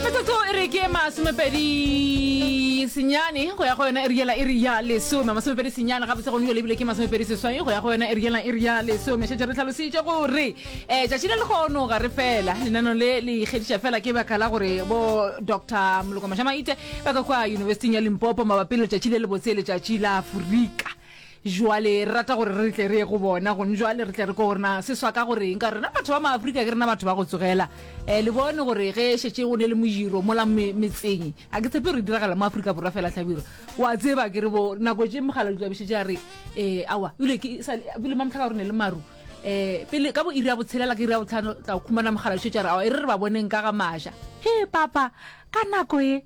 metsotso e re ke masomepedi senyane go ya go yona eri yela eri ya lesome masomepedi senyane gabotse gone jale ebile ke masomepedi seswai go ya go yona eri yela eri ya lesome šetse re tlhalositše gore um tšatši le lekgono ga re fela lenano le le ikgediša fela ke baka la gore bo dr moloko mašamaite ba ka kwa yunibesithing ya limpopo mabapi le letšatši le lebotse letšatši la aforika Jwale re rata gore re tle re ye go bona gone jwale re tle re ko gore na se swa ka gore eng ka rena batho ba maafrika ke rena batho ba go tsogela um le bone gore ge šetse go ne le mojiro mola metseng a ke tshepe re diragala mo aforika borwa fela tlhabiro wa tseba ke re bo nako tse mogala ditlabišetse a re um awa ebile ke ebile mamtlha ka gore ne le maru um pele ka bo iri ya botshelela ke iri ya botlhano tla khumana mogala šetse a re awa e re re ba boneng ka ga maša he papa ka nako e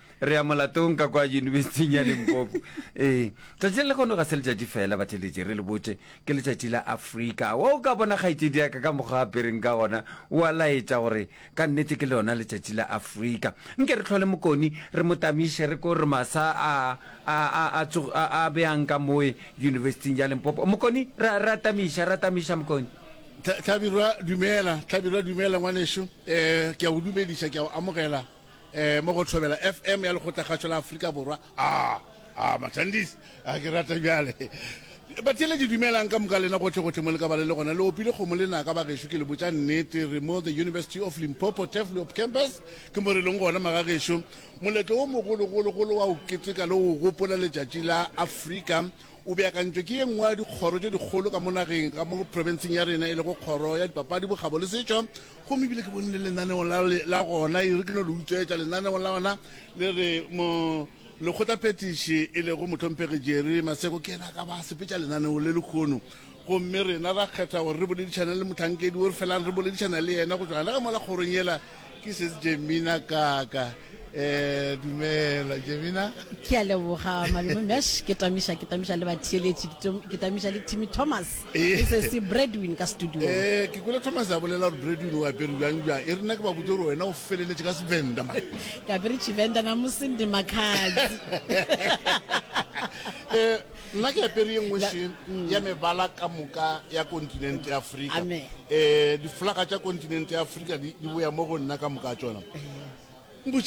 re ya molatong ka kwa yunibesithing ya limpopo ee tšatši le lekgono ga se letšatši fela batheletše re le botše ke letšatši la afrika wa o ka bona kgaetšedi yaka ka mokgwa apereng ka gona wa laetša gore ka nnete ke lona letšatši la afrika nke re tlhole mokoni re mo tamiše re ko re masa a a a a tsogo a a beyang ka moe yunibesithing ya limpopo mokoni ra ra tamiša ra tamiša mokoni Tla- tlhabirwa dumela tlhabirwa dumela ngwaneso um ke a go dumediša ke a go amogela eh, mo go thobela fm ya lekgotlakgatšo la aforika borwa a ah, a ah, mathandisi a ah, ke rata bjale batele di dumelang ka moka lena gotlhe gotlhe mo le ka bale le gona le opile kgomo le naka ba gešo ke le botsa nnete re mo the university of limpopo teflop campus ke mo re leng gona maga gešo moletlo o mogologologolo wa o keteka le o gopola letšatši la afrika o beakantšwe ke ye nngwe ya dikgoro tše dikgolo ka mo nageng ka mo provinceng ya rena e lego kgoro ya dipapadi bokgabo le setšo Gomme ebile ke bonile lenaneo la, la gona, e re ke no le utswetša, lenaneo la gona le re mo lekgotlaphethiši e lego motlhomphegi Jerry Maseko ke yena a ka ba a sepetša lenaneo le lekgono. Gomme rena ra kgetha gore re boledišane le mohlankedi o re felang re boledišana le yena go tšwa gona ka mola kgorong yela, ke setsjemina kaka. Eh, dumela jemina ke a leboga malome mesh ke tamiša ke tamiša le batheeletši ke tamiša le timmy thomas eh. e se se breadwin ka studio eh, ke kwele thomas a bolela gore breadwin o apere bjang bjang e rena ke ba botse gore wena o feleletše ka sevenda ma ke apere chivenda na mosende makhatsi eh, nna ke apere ye nngwe se mm. ya mebala ka moka ya continente ya afrika um diflaga tša continente ya afrika di boya mo go nna ka moka tsona